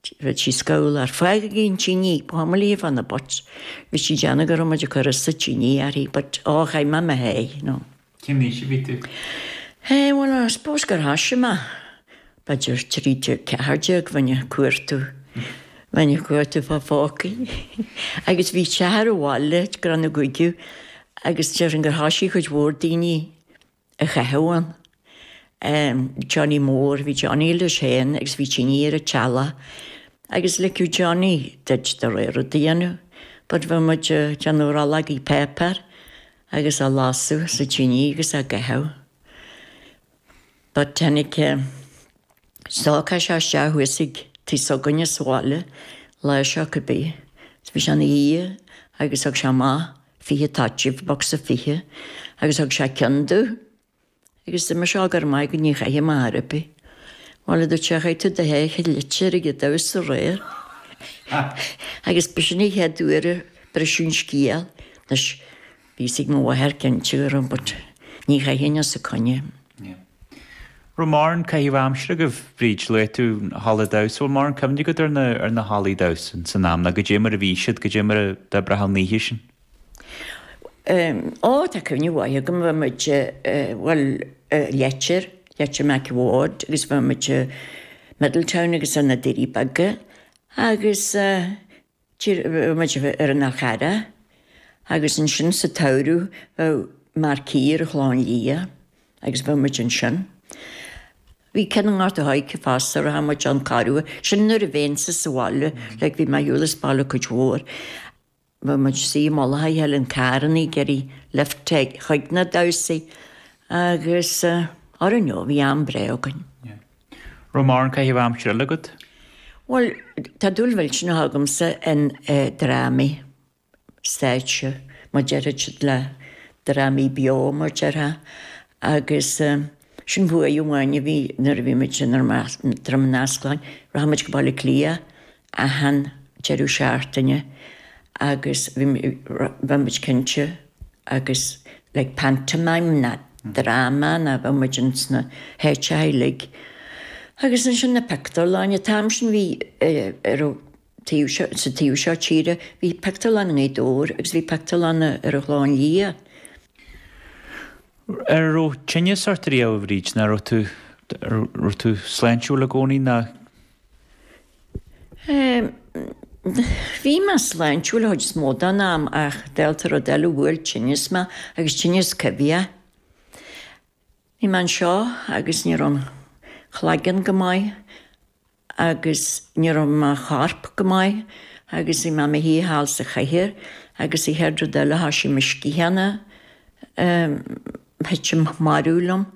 Throid sí scaoll ar faidh ag intinn í pamalaí fá na butts bhí sí a' déanamh go raibh muid á gcur sa tine uirthi but oh chaith mé mé féin you know. Cén aois a bhí tú? Hé bhuel I suppose gur thoisigh mé b'fhéidir trí déag ceathair déag bheinn ag cuartú bheinn ag cuartú fá phócaí agus bhí seisear abhaile ag cur na gcuigiú agus déarfainn gur thoisigh cuid mhór daoiní a chaitheamh ann. Johnny Mór, bhí Johnny leis féin agus bhí tine ar a' teallach agus ligeadh Johnny duit do rogha rud a dhéanamh but bhí muid a' déanamh rollógaí páipéir agus á lasadh sa tine agus á gcaitheamh but tháinig eh. stócach isteach thuas ag tigh s'againne sa bhaile lá seo cibé. Bhí sé ina dhiaidh agus thug sé amach fiche toitín, bocsa fiche, agus thug sé ceann domh agus dúirt mise á go raibh maith agat ní chaithim ar chor ar bith. Bhuel, a dúirt sé, chaith tú do sháith i Leitir ag an damhsa aréir. Agus b'shin an chéad uair a briseadh an scéal, anois, bhí a fhios ag mo mháthair cinnte but, ní chaithfinn os a coinne. Yeah. Raibh mórán caitheamh aimsire agaibh, Bríd, luaigh tú na hallaí damhsa, bhfuil mórán cuimhne agat ar na, ar na hallaí damhsa san am, ná goidé mar a bhí siad, goidé mar a d'oibrigh an oíche sin? Ó, tá cuimhne mhaith agam, bheadh muid, bhuel Leitir, Leitir Mhic a' Bhaird agus bheadh muid Middletown agus ar na Doirí Beaga agus, bheadh muid ar an Mhachaire agus ansin sa tsamhradh bheadh marquee ar an Chlochán Liath agus bheadh muid ansin. Bhí ceann i nGort a' Choirce fosta rachadh muid ann corruair, sin nuair a bheinnse sa bhaile, like bhí mé ar shiúl as baile cuid mhór. Bheadh muid suite i mullach a chéile in carrannaí, getting lift chuig na damhsaí agus I don't know, bhí am breá againn. Yeah. Raibh mórán caitheamh aimsire eile agat? Bhuel, tá dúil mhillteanach agamsa in drámaí stáitse, mar a deir siad le drámaí beo mar a déarfá, agus sin buaidh amháin a bhí nuair a bhí muid i nDroim Ineasclainn, rachadh muid go Baile Átha Cliath achan deireadh seachtaine agus bheadh muid cinnte agus like pantomime ná dráma ná bheadh muid ins na háiteacha uilig agus ansin na pictiúrlann, an t-am sin bhí ar an taobh seo, sa taobh seo tíre, bhí pictiúrlann i nGaoth Dobhair agus bhí pictiúrlann ar an Chlochán Liath. An raibh tinneas ort riamh, a Bhríd, ná raibh tú, raibh tú sláintiúil i gcónaí ná? Bhí mé sláintiúil an chuid is mó den am ach dálta rud eile bhuail tinneas mé agus tinneas coimhthíoch. Bhí mé anseo agus ní raibh an claigeann go maith agus ní raibh mo chorp go maith agus bhí mé i mo shuí thall sa chathaoir agus an chéad rud eile thoisigh mo sciathána a thuitim marbh liom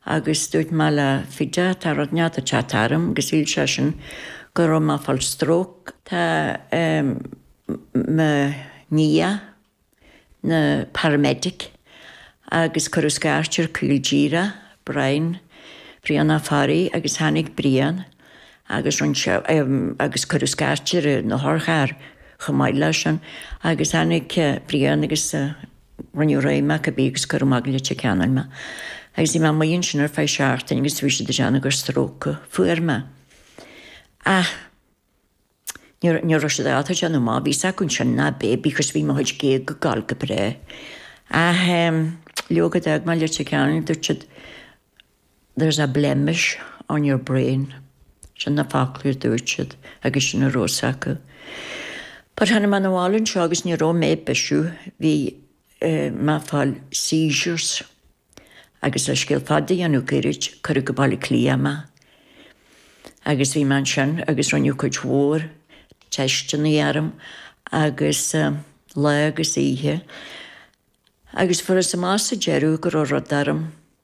agus dúirt mé le Fidea tá rud inteacht ag teacht orm agus shíl seisean go raibh mé ag fáil stróc. Tá mo nia ina paramedic agus cuireadh scairt ar Caol Dírea, Brian, Brian Ó Fearraigh agus tháinig Brian agus rinne sé agus cuireadh scairt ar an otharcharr chomh maith le sin agus tháinig Brian agus Rinneadh réidh mé cibé agus cuireadh amach go Leitir Ceanainn mé, agus bhí mé amuigh ansin ar feadh seachtaine agus bhí siad ag déanamh gur stróc a fuair mé. Ach ní raibh siad ábalta déanamh amach bhí acu ansin ná bith, because bhí mo chuid géaga ag gabháil go breá. Ach leoga d'fhág mé Leitir Ceanainn, dúirt siad, There's a blemish on your brain, sin na focla a dúirt siad agus sin a raibh a fhios acu. But tháinig mé 'na bhaile anseo agus ní raibh mé ag bisiú, bhí mé ag fáil seizures agus le scéal fada a dhéanamh goirid, cuireadh go Baile Átha Cliath mé agus bhí mé ansin agus rinneadh cuid mhór teisteanna orm agus lá agus oíche agus fuarthas amach sa deireadh go raibh rud orm.